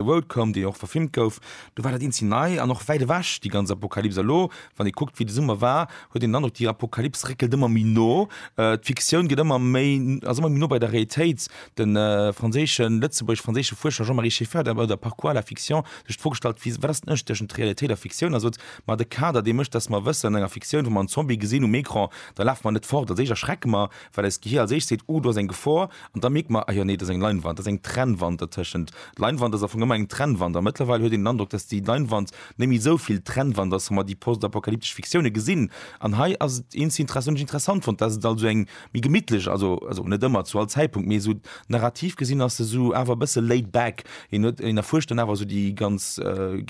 Roadcomb, deen jo och verfilmt gouf, do war dat een zi nei an och wäit ewech, déi ganz Apokalyps. Elo, wann ee kuckt, wéi de Summer war, huet een den Androck, déi Apokalyps réckelt ëmmer méi no. D'Fiktioun gëtt ëmmer méi, ass ëmmer méi no bei der Realitéit. De franséischen, lëtzebuergesch-franséische Fuerscher Jean-Marie Schiffert hat bei der Par quoi la fiction? sech d'Fro gestallt, wéi, wat ass den Ënnerscheed tëschent Realitéit a Fiktioun? A sot, ma de Kader, dee mécht, datt mer wëssen, an enger Fiktioun, wa mer en Zombie gesinn um Ecran, da lafe mer net fort, als éischt erschrecke mer, well eist Gehir als éischt seet, Uh, do ass eng Gefor, an da mierkt mer, Ah jo, nee, do ass eng Leinwand, do ass eng Trennwand dertëschent. Leinwand ass am Fong ëmmer eng Trennwand, a mëttlerweil huet een den Androck, dass déi Leinwand net méi esou vill Trennwand ass, wa mer déi postapokalyptesch Fiktioune gesinn. An hei ass et eens inter-essant, hunn ech interessant fonnt, dass et also eng méi gemittlech, also, also net ëmmer, zu all Zäitpunkt, mee esou narrativ gesinn ass se esou awer e bësse laid back. Een huet, een erfuerscht dann awer esou déi ganz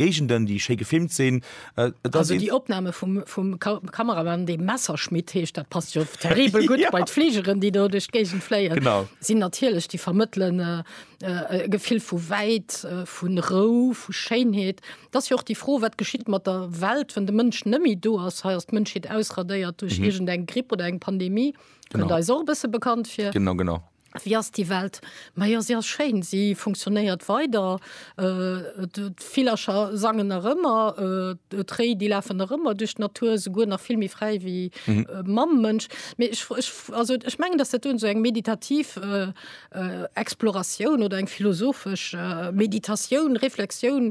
Géigenden, déi schéi gefilmt sinn, Äh, also die Opname vum, vum Kameramann de Messerschmidt heescht dat passt jo terribel gut ja. bei Fliegeren, die do duch Gegen fléien. sinn natierlech die vermëttelen äh, äh, äh, Gefill vu wäit, äh, vun Rou, vu Scheinheet. Dat jo och die froh, wat geschitt mat der Welt, wann de Mënsch nëmi do ass heiers d Mënschheet ausradéiert duch mhm. egent eng Gripp oder eng Pandemie. Genau. Da is och bësse bekannt fir. Genau genau. Wéi ass déi Welt? Ma jo, se ass schéin, se funktionéiert weider, d'Villercher sangen nach ëmmer, d'Réi, déi lafen nach ëmmer duerch d'Natur, souguer nach vill méi fräi wéi mam Mënsch. Mee ech, ech, also ech mengen, datt dat do esou eng meditativ Exploratioun oder eng philosophesch Meditatioun, Reflexioun,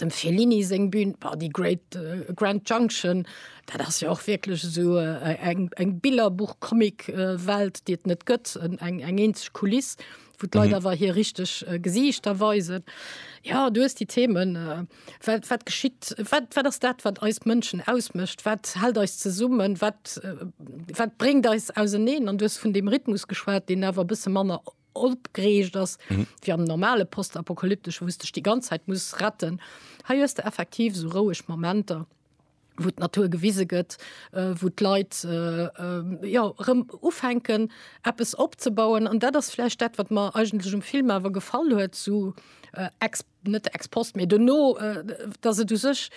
dem Fellini seng Bühn war die Great äh, Grand Junction, dat ass ja och wirklich so äh, eng, eng Billerbuch Comic äh, Welt, déi et net gëtt, eng, eng eenzeg Kuliss, wo d'Leit mhm. awer hier richtig äh, Gesichter weisen. Ja du hast die Themen äh, wat, wat geschitt, wat, wat ass dat, wat eis Mënschen ausmëscht, wat hält eis zesummen, wat, äh, wat bringt eis auseneen an du hast vun dem Rhythmus geschwat, den awer bësse manner opgereegt ass wéi am normale postapokalyptesche wou s dech déi ganz Zäit muss retten. Hei hues de effektiv sou roueg Momenter wou d'Natur gewise gëtt, äh, wou d'Leit äh, äh, ja rëm ufänken eppes opzebauen an dat ass vläicht dat wat mer eigentlech um Film awer gefall huet zu äh, ex, net ex post méi duerno äh, datt et u sech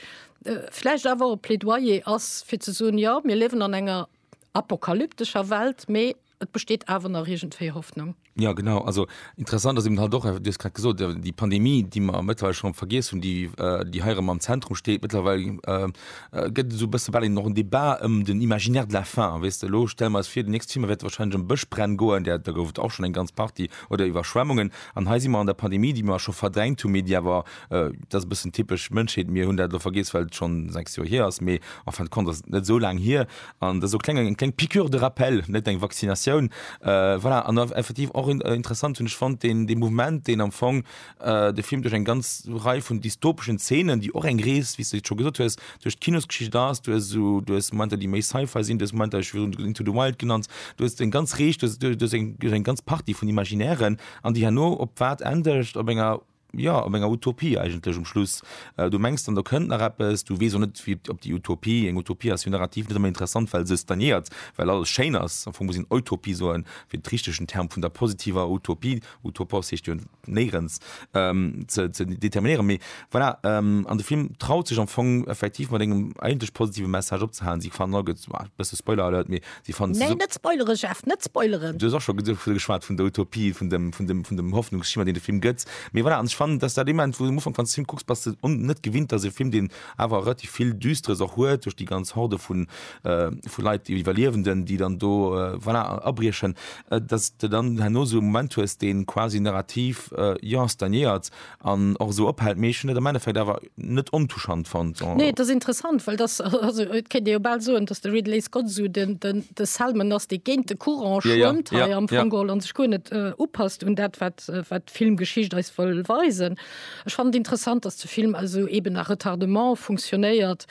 äh, vläicht awer e Plädoyer ass fir ze soen, ja mir liewen an enger apokalyptescher Welt, mee Et besteet awer nach iergendwéi Hoffnung. Ja genau, also interessant ass eben halt och, du hues grad gesot, der- déi Pandemie, déi mer mëttlerweile schonn vergiess hunn, déi äh, déi hei erëm am Zentrum steet, mëttlerweile äh, äh, gëtt esou e bësse bal eben och en Débat ëm den Imaginaire de la faim, weess de. Elo stelle mer eis vir, den nächste Thema wäert wahrscheinlech ëm Bëschbränn goen, där do gouf et och schonn eng ganz Partie, oder Iwwerschwemmungen. An hei si mer an der Pandemie, déi mer scho verdrängt hunn, mee déi awer, äh, dat ass e bëssen typesch Mënschheet, mir hunn dat elo vergiess, well et schonn sechs Joer hier ass, mee en fin de compte ass et net esou laang hier, An dat ass och eng kleng Piqûre de rappel, net eng Vaccinatioun. Voilà, an effektiv och interessant hunn ech fonnt deen dee Mouvement, deen am Fong de Film duerch eng ganz Rei vun dystopeschen Zeenen, déi och eng Rees, wéi s de et scho gesot hues, duerch d'Kinosgeschicht ass. Du hues esou, du hues Momenter, déi méi Sci-Fi sinn, du hues Momenter, ech hu virun Into the Wild genannt, du hues eng ganz Rees, du hues eng ganz Partie vun Imaginären, an déi herno op wat endegt? Op enger. ja, op enger Utopie eigentlech um Schluss. Äh, du mengs dann, da kënnt nach eppes, du weess och net, wie op déi Utopie, eng Utopie ass jo narrativ net ëmmer interessant, well se stagnéiert, well alles schéin ass. Am Fong muss een Eutopie soen, fir de richtigen Term vun der positiver Utopie, utopos heescht jo néierens, ähm, ze, ze determinéieren. Mee voilà, ähm, an de Film traut sech am Fong effektiv mat engem eigentlech positive Message opzehalen. Si fannen all, gëtt, ah, bësse Spoiler-Alert, mee Déi fannen se Nee, sup. net spoilere Jeff, net spoileren! Du hues och scho ge vu geschwat vun der Utopie, vun dem, vun dem, vun dem Hoffnungsschimmer, deen de Film gëtt. Mee voilà, an ech fannen, dass dat dee Moment, wou du um Ufank, wann s de Film kucks, bass de un, net gewinnt, dass e Film, deen awer relativ vill Düsteres och huet, duerch déi ganz Horde vu vu Leit, déi Iwwerliewenden, déi dann do voilà abriechen, dass s de dann herno esou e Moment hues, dee quasi narrativ, jo, stagnéiert, an och esou ophält, mee ech hunn et am Endeffekt awer net ontouchant fonnt. Nee, et ass interessant, well dass, also et kéint ee jo bal soen, dass de Ridley Scott esou den, den, de Selman ass, dee géint de Courant Ja, ja, schwëmmt hei ja, am ja. Fong geholl an sech guer net upasst un dat, wat, wat d'Filmgeschicht eis wëll weisen. Ech fannen et interessant, dass de Film also eeben à retardement funktionéiert,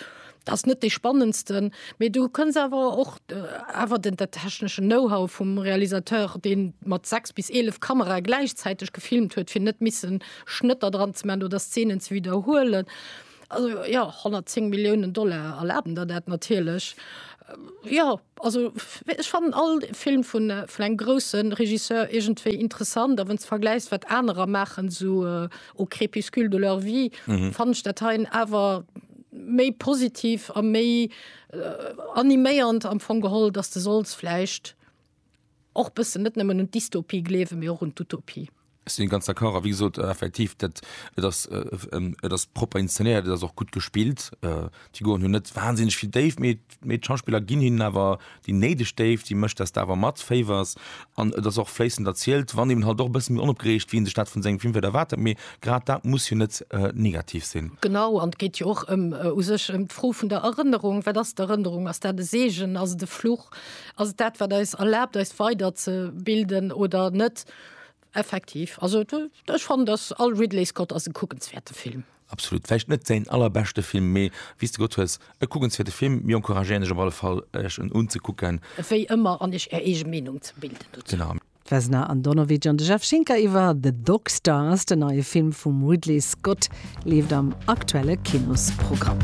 Ass net dee spannendsten, mee du kënns awer och awer den der techneschen Know-how vum Realisateur, dee mat 6 bis 11 Kamerae gläichzäiteg gefilmt huet, fir net missen Schnëtter dran ze maachen oder Szenen ze widderhuelen. Also jo, 110 Milliounen Dollar erlaben der dat natierlech. Jo, also ech fannen all Film vun engem grousse Regisseur iergendwéi interessant. A wann s de vergläichs, wat anerer maachen, esou au crépuscule de leur vie, fannen ech dat heien awer, méi positiv a méi animéiernd am Fong geholl, dass de solls vläicht och bëssen net nëmmen un d'Dystopie gleewen, mee och un d'Utopie. Ech sinn ganz d'accord a wéi gesot effektiv dat et ass et ass propper inszenéiert, et ass och gutt gespillt. D'Figuren hunn net wahnsinneg vill Déift mee Mee d'Schauspiller ginn hinnen awer déi néideg Déift, si mécht, dass de awer matféiwers. An et ass och fléissend erzielt, wann eben halt och e bësse méi onopgereegt, wéi een sech dat vun sengem Film vläicht erwaart hätt. Mee grad dat muss jo net negativ sinn. Genau, an et geet jo och ëm, u sech, ëm d'Fro vun der Erënnerung. Wat ass d'Erënnerung? Ass dat e Seegen? Ass et e Fluch? Ass et dat, wat eis erlaabt, eis weiderzebilden oder net? Effektiv, also ech fannen dass all Ridley Scott ass e kuckenswäerte Film. Absolut, vläicht net säin allerbeschte Film, mee wéi s de gesot hues, e kuckenswäerte Film. Mir encouragéieren Iech op alle Fall, Iech en unzekucken. Wéi ëmmer, an Iech Är eege Meenung ze bilden dozou. Genau. D'Vesna Andonovic an de Jeff Schinker iwwer The Dog Star ass den neie Film vum Ridley Scott, leeft am aktuelle Kinosprogramm.